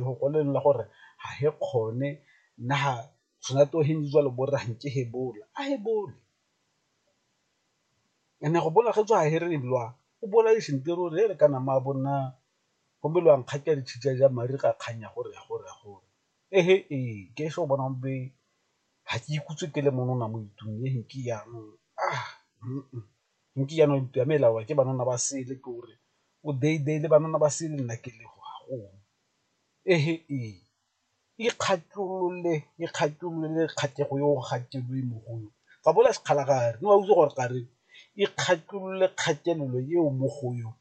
go kwalelela gore ga e kgone nna ga tshwana to he ntse jalo bo re nke he bola a he bole and-e go bola ge tswa he re lwa o bola e seng tiro re kana mma bo nna gomme lo a nkgatha di tshika ja mare ga kgang ya gore ya gore ya gore e he ee ke ese o bonang be ga ke ikhutse ke le mo nna mo ntlung e he ke jaanong . nke jaanong ntlo ya me e laolwa ke banana ba sele ke gore o le banana ba sele nna ke le wa gong ikgatholole kgatlhego yo ga koloi mogolo ga bo na sekgala ga re wa utlwa gore ga re ikgatholole kgatelelo eo mo go yone .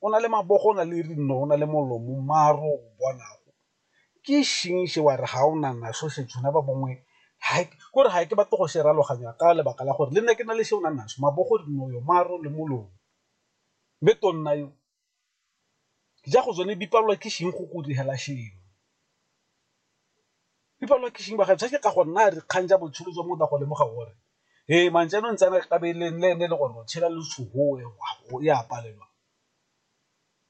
o na le mabogo, o na le dinao, o na le molomo maar o bonang ke ešing še wa re ga o na naso še tšhuna ba bangwe ko re ga ke batle go se raloganya ka lebaka la gore le nna ke na le se o nang naso mabogo, dinao, maar le molomo. Mme tonna yo ja go tsone di palelwa ke ešing go kudu hela šengwe. People wa Kishing ba ga tshwake ka go nna dikgang tsa botshelo jwa motho a go lemoga gore ee man jaanong tsena ka be le nne le gore o tshela le tshogoe o ya palelwa.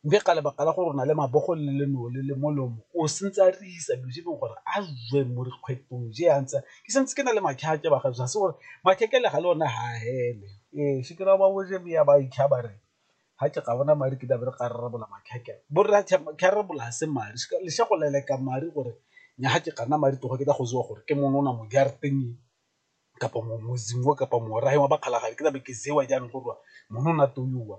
Mme ka lebaka la gore o na le mabogo le le no le le molomo o santse a re isa dilo tse e leng gore a jwe mo dikgwetong je a ntse ke santse ke na le makhake ba ga se gore makheke le ga le one ha hele ee se ke ra ba boje ba ikgabare. ga ke ga bona madi ke tlabe re ka rarabola mathata borra tharabola se madi le sa go leleka madi gore nya ga ke gana madi toga ke tla go jewa gore ke mongwe o na mo jarateng kapa mo motseng o kapa morafe wa ba kgalagadi ke tlabe ke jewa jaanong gore wa monna o na to wa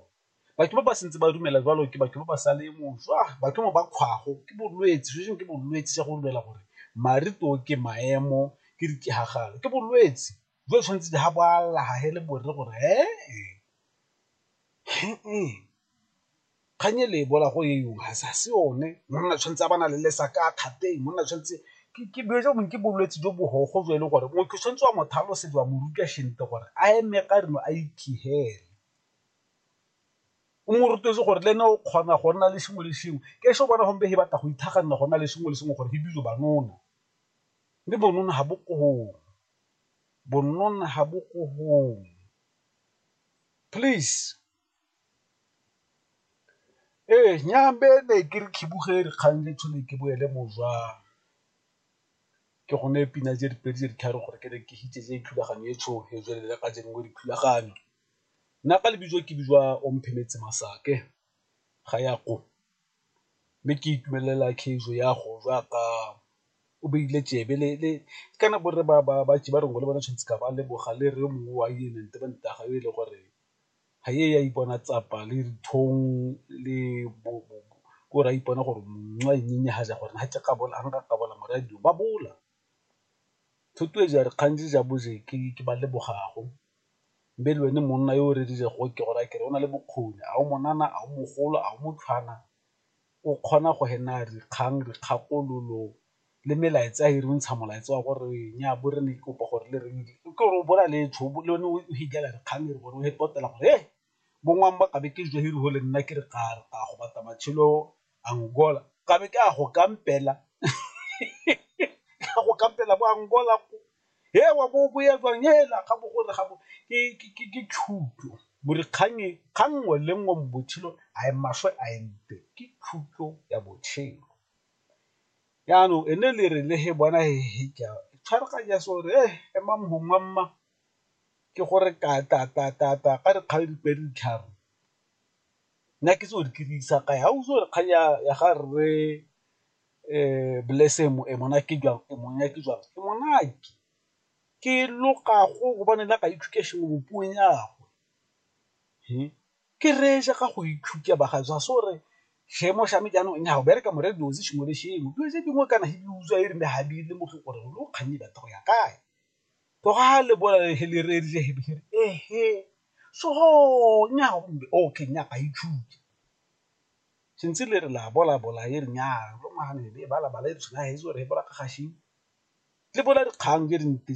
batho ba ba santse ba dumela jalo ke batho ba ba sa le moswa batho ba kgwago ke bolwetse se sengwe ke bolwetse sa go dumela gore madi to ke maemo ke diketsagalo ke bolwetse. jo tshwanetse di ga bo a lla ga he le borre gore ee kgang e le e bola go e yong ga sa se one monna tshwanetse a bana le lesa ka kgateng monna tshwanetse ke dilo jo bongwe ke bolwetse jo bogogo jo e leng gore motho tshwanetse wa motho a losetse wa mo ruta sentle gore a eme ka reno a ikhihele o mo rutetse gore le ene o kgona go nna le sengwe le sengwe ke se o bona gompe he batla go ithaganela go nna le sengwe le sengwe gore he dilo banona mme bonona ga bo koo bonnona ha bo ko hong please ee nyambe ne ke re khibuge dikgang le tshone ke boele mojwang ke gone pina tse dipedi tse di tharo gore ke re ke hitse tse dithulaganyo e tsho e tswelele ka jeng mo dithulaganyo nna ka lebitso ke bijwa o mphemetse masake ga ya ko mme ke itumelela kheiso ya go ja ka o beile tsebe le kana borre ba ntse ba rongwa le bone tshwanetse ka ba leboga le re yo mongwe wa yo e le gore ga e ya ipona tsapa le dithong le bo ko re a ipona gore ga ja gore ga ke ka bola morwadio ba bola. Thuto e ja re kgang di ja bo je ke ke ba lebogago be le ene monna yo o rera go ke go raya ke re o na le bokgoni a o mo nana a o mogolo a o mo tshwana o kgona go nna a dikgang dikgakololo le melaetsa e re ntsha molaetsa wa gore nya bo re ne ke kopa gore le reng ke gore o bona le fitlhela dikgang e gore o ipotela gore bo ngwana ba kabe ke le nna ke re ka re ka go batla matshelo Angola ka be ke a go kampela go kampela bo Angola ko he wa bo o ya jwang hela ga bo gore ga bo ke thuto gore kgang e ga nngwe le nngwe mo botshelong a e maswe a e mpe ke thuto ya botshelo. Jaanong e ne e le re le he bona he he ke a tshwaraganya se gore he ema mongwe mma ke gore ka re kgang e re ditlhare. Nna ke tse o di dirisa ka ha o re kgang ya ga rre Blessing Monate jang e monate jwang e monate ke loga go gobane la ka education mo puong ya gagwe ke reetsa ka go ithuta ba ga ja so re seemo sa me jaanong nna go bereka mo radio sengwe le sengwe dilo tse dingwe kana di utlwa e rile ga di le mo go gore lo kgang e batla go ya kae. Toga le bola le le re rile he bihiri ehe so nya mbe okay nya ga itshuke sentse le re la bola bola e re nya lo mahane le bala bala e re tshwenya he so re bola ka gašing le bola dikgang tse dintsi.